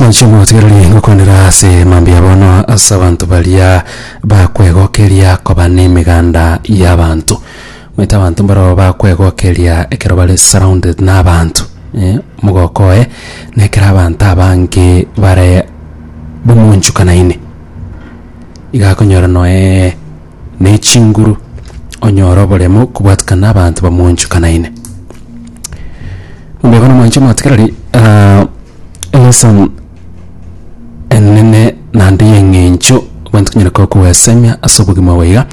Nainche motigererie ngokwanera ase mambia bono ase abanto baria bakwegokeria koba nemeganda y'abanto omanyete abanto mbarao bakwegokeria ekero bare surrounded nabanto eh, omogoko oye na ekero abanto abange bare bomonchukanaine iga akonyora noe ne chinguru, onyore oboremo kobwatikana n'abanto bamoonchokanaine. Mbaigo nomwanche omwatikereri ah, elesson enene naende y'eng'encho abanto tonyare koba koesemia ase obogima obo iga,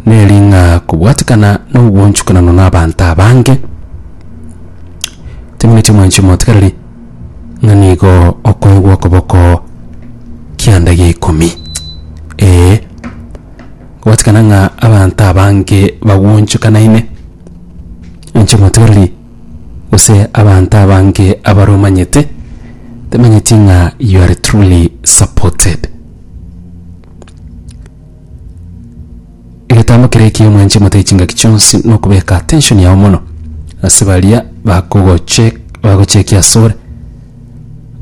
neri ng'a kobwatikana na obwoonchokanano na abanto abange, temineti omwanche omwatikereri. ng'a nigo okoegwa okoboko kianda gia ikomi. Ee, gwatikana ng'a abanto abange bagwonchokanaine inche motoreri, gose abanto abange abare omanyete, temanyeti ng'a you are truly supported. Egetambo keria ekiya omwanche mote chingaki chionsi nokobeka attention yao mono ase baria bakogoche bagochekia asore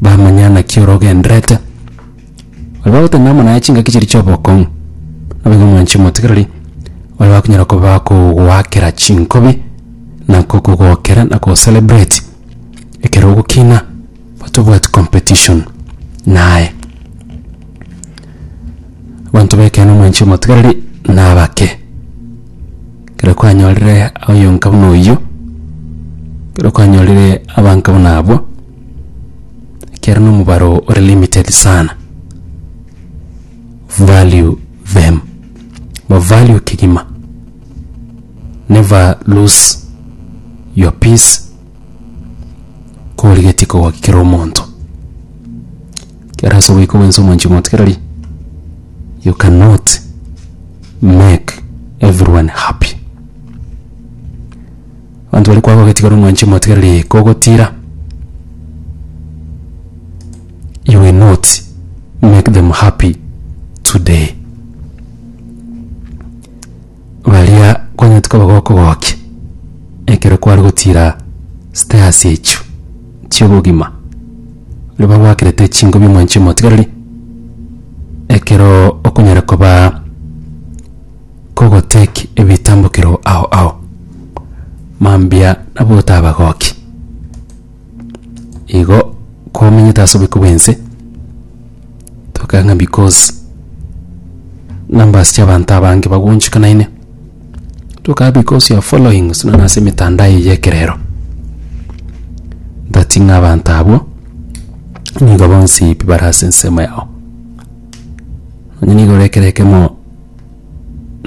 bamanya naki orogenderete baria bagoteba amo naye chingaki chiria chiobokong'u naboigo omwanche omotigereri baria bakonyara koba bakogoakera chinkobi na kokogokera na kocelebrate ekero ogokina. Tobwati competition naye. Abanto b'ekeene omwanche omotigareri nabake. Ekero kwanyorire oyonka buna oyio, ekero kwanyorire abanka buna abwo, ekiagera na omobaro ore limited sana. Value them. Ba value kegima. Never lose your peace. korigetie kogaki kera omonto. Ekero ase ogoika gwensi omonchie omonto kera rii, you cannot make everyone happy. Abanto baria kwagogeti kera omwanchi omonto kera rii kogotira, you will not make them happy today. Baria kwanyete koba gokogokia ekero kware gotira stairs echio chi'obogima, baria bagwakerete chinko bi'omwancho omotigareri, ekero okonyara koba kogo take ebitambokero ao ao, mambia nabo otabagoki. Igo kwamenyete ase oboiko bw'ense, toka ng'a because numbers chiabanto abange bagonchika naende, toka because you are following gose nonya ase emetandao eye ya ekerero, that ng'a abanto abwo nigo bonsi pi bare ase ensemo yao. Onye nigo ore ekero ekemo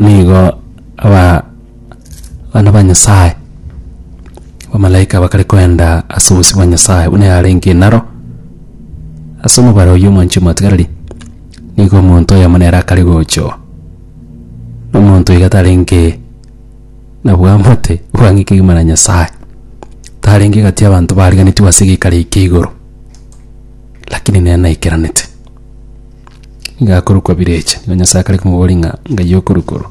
nigo aba. Abana ba Nyasae, abamalaika bakare koenda ase obosio bwa Nyasae buna yarenge naro ase omobaro oyio omoanchwa omotigareri, nigo omonto oyomo nere akare gochoo. Na omonto iga tarenge na bwamate bwang'e kegima na Nyasae, tarenge egati y'abanto bariganitigwe ase egeikaro eke kia igoro, lakini nere naikeranete. Nigo akorokwa Birecha, na Nyasae akare komoboria ng'a ngai okorokoro.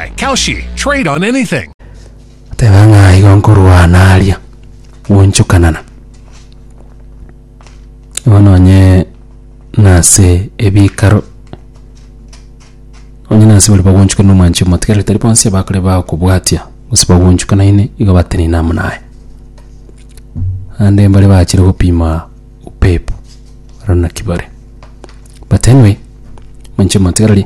Hey, Kalshi, trade on anything. Teba ng'a igo nkorwana aria gonchokanana. Igo nonye nase ebikaro onye nase bari bagonchokana na omwanchi omotigare tari bonsi abakore bakobwatia gose bagonchokanaine igo batenena amo naye. Ande mbare bachire gopima upepo, barabwo naki bare. But anyway, omonche omotigari.